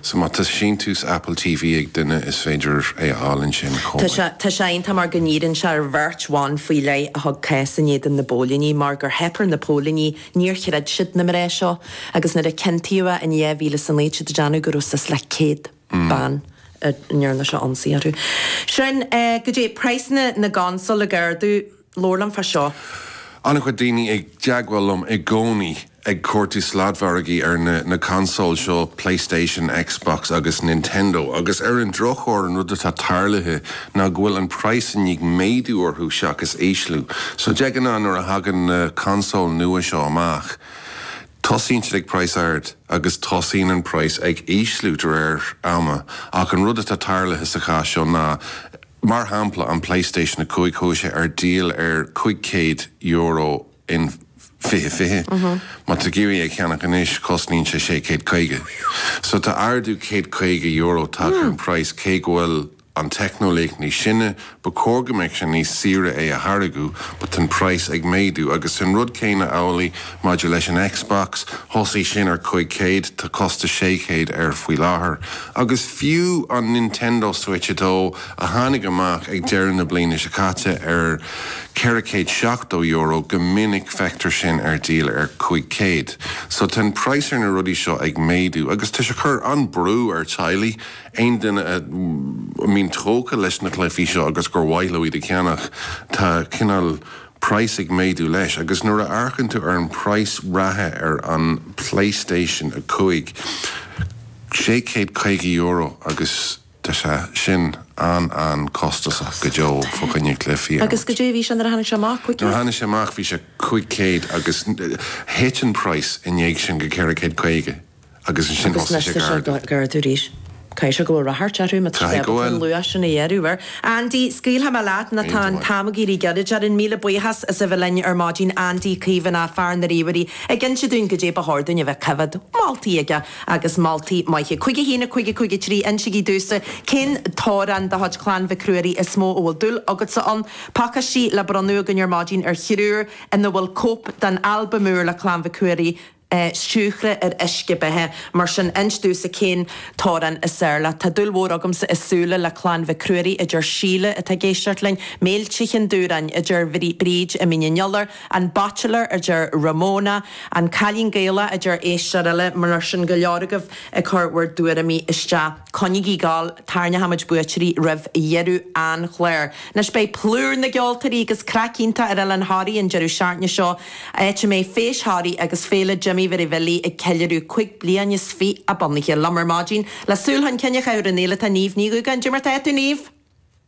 So má tá síntiús Apple TV ag duine is féidir é a fháil ansin chomh maith. Tá sé iontach mar go ndíríonn sé ar bheirt bhan faoi leith a thug cás in éadan na bpóilíní mar gur theip ar na póilíní, níor chreid siad na mná seo agus nuair a ciontaíodh é in 2009 siad ag déanamh go raibh suas le céad bean a ndearna sé ionsaí orthu. Sin é, goidé praghsanna na gconsól ag ardú. Labhair liom fá seo. An-chuid daoine i dteagmháil liom i gcónaí ag cuartú sladmhargaí ar na consóil seo, Playstation, Xbox agus Nintendo, agus ar an drochuair an rud atá tarlaithe ná go bhfuil an praghas i ndiaidh méadú orthu seachas ísliú. So de ghnáth nuair a thagann na consóil nua seo amach, tosaíonn siad ag praghas ard agus tosaíonn an praghas ag ísliú de réir ama, ach an rud atá tarlaithe sa chás seo ná, Mar shampla, an Playstation 5 chuaigh sé ar díol ar €500 in 2020. Má tá tú ag iarraidh é a cheannach anois, cosnaíonn sé sé chéad caoga. So tá ardú céad caoga euro tagtha ar an praghas cé go bhfuil an teicneolaíocht níos sine, ba chóir go mbeadh sé níos saoire é a tháirgeadh but tá an praghas ag méadú agus an rud céanna amhlaidh Maidir leis an Xbox, thosaigh sin ar 500, tá costas 600 air faoi láthair, agus fiú an Nintendo Switch 2, a tháinig amach ag deireadh na bliana seo caite ar €470, go minic feictear sin ar díol ar 500. So tá an praghas ar na rudaí seo ag méadú, agus tá sé ag cur an-brú ar teaghlaigh, aon duine a mbíonn tógtha leis na cluifí seo agus gur mhaith leo iad a cheannach, tá cineál. praghas ag méadú leis, agus nuair a amharcann tú ar an praghas reatha ar an Playstation 5, sé céad caoga euro, agus tá sé sin an-an costasach go deo fá choinne cluichí a imirt. Agus goidé a bhí sé nuair a tháinig sé amach? Cúig céad? Nuair a tháinig sé amach bhí sé cúig céad, agus thit an praghas i ndiaidh sin go ceithre céad caoga. agus ansin thosaigh sé ag ardú. Agus anois tá sé ag ardú arís. Caithfidh sé go bhfuil ráchairt orthu má tá siad ábalta an luach sin a ghearradh air. Andy, scaoilfidh mé leat nó tá an t-am ag éirí gairid orainn. Míle buíochas as a bheith linn ar maidin, Andy Caomhánach, fear na ríomhairí, ag inse dúinn goidé ba chóir dúinn a bheith ag coimhéad. Moltaí aige agus moltaí maithe. 51 553 Insigí domhsa cén t-amhrán de chuid Chlann Mhic Ruairí is mó a bhfuil dúil agatsa ann. Pacáistí le bronnadh againn ar maidin ar thriúr ina bhfuil cóip den albam úr le Clann Mhic Ruairí, é siúcra ar uisce beatha. Mar sin, inis domhsa cén t-amhrán is fearr leat. Tá dúil mhór agamsa i súile le Clann Mhic Ruairí, a deir Síle, atá ag éisteacht linn. Méilte Cheann Dubhrann, a deir Bríd, i Mín an Iolair. An Bachelor, a deir Ramona. An Cailín Gaelach, a deir éisteoir eile. Mar sin, go leor agaibh ag cur bhur dtuairimí isteach. Coinnigí ag gabháil, tarraingeoidh muid buaiteoirí roimh dheireadh an chláir. Anois beidh plúr na gceoltóirí agus craic iontach ar Oileán Thoraí an deireadh seachtaine seo, áit a mbeidh Feis Thoraí agus Féile Jimí Mhary Bhillí ag ceiliúradh cúig bliain is fiche a bunaithe. Liom ar maidin, le súil chun cinn a chaitheamh ar an fhéile, tá Niamh Ní Dhúgáin. Cad é mar atá tú, Niamh!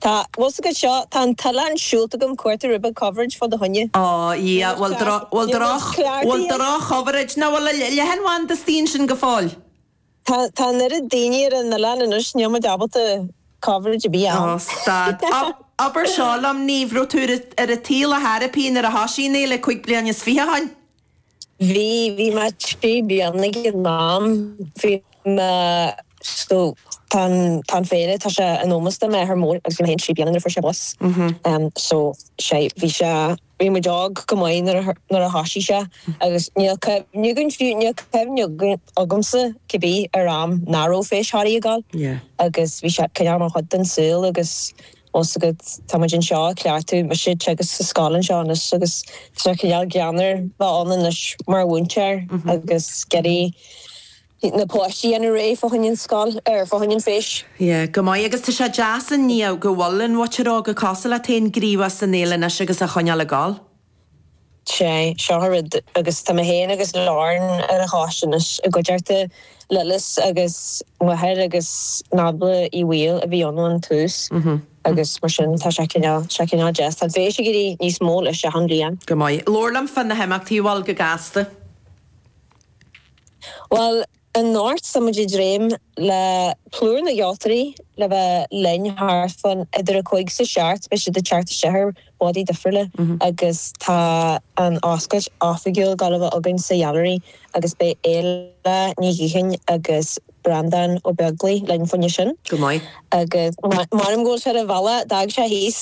Tá, bhus agad seo? Tá an t-oileán siúlta agam ag cuartú ribe coverage fá do choinne. Ó, Dhia, bhfuil, bhfuil, bhfuil droch-choverage nó bhfuil a leithéid bhán de staon sin go fóill? Tá, tá an oiread daoine ar an oileán anois níl muid ábalta coverage ar bith a fháil. Ó, stad. Abair seo liom, Niamh, raibh tú ar, ar an tsaol ar chor ar bith nuair a thoisigh an fhéile cúig bliana is fiche ó shoin? Bhí, bhí mé trí bliana ag an am, bhí mé, so tá an, tá an féile, tá sé in ómós do m'athair mór agus bhí mé féin trí bliana nuair a fuair sé bás. So sé, bhí sé, bhí muid óg go maith nuair a, nuair a thoisigh sé agus níl cuimhne againn fiú, níl cuimhne againn, agamsa cé bith ar am nach raibh Feis Thoraí ag gabháil agus bhí sé, cineál mar chuid den saol agus. Fhios agat tá muid anseo ag cleachtadh mo Shit agus sa scoil anseo anois agus tá sé cineál greannmhar bheith ann anois mar mhúinteoir agus ag iarraidh na páistí a dhéanamh réidh fá choinne an scoil, er, fá choinne an feis. Yeah, go maith. Agus tá sé deas i ndiaidh go bhfuil an mhuintir óg cosúil leat féin gníomhach san Fhéile anois agus a choinneáil ag gabháil. Sea, seo an rud, agus tá mé féin agus Lauren ar an choiste anois i gcuideachta Lillis agus m'athair agus Nábla Uí Bhaoill a bhí ann ón tús agus mar sin tá sé cineál, sé cineál deas. Tá an fheis ag éirí níos mó leis achan bliain. Go maith. Labhair liom fá na himeachtaí bhuel go gasta. Bhuel, Anocht tá muid ag dréim le plúr na gceoltóirí le bheith linn thart fán idir a cúig 's a seacht beidh siad ag teacht isteach ar bádaí difriúla agus tá an oscailt oifigiúil ag gabháil a bheith againn sa Ghailearaí agus beidh Éile Ní Ghiothain agus Breanndán Ó Beaglaoi linn fá choinne sin. Go maith. Agus mothaím go bhfuil sé ar an bhealach d'fhág sé thíos.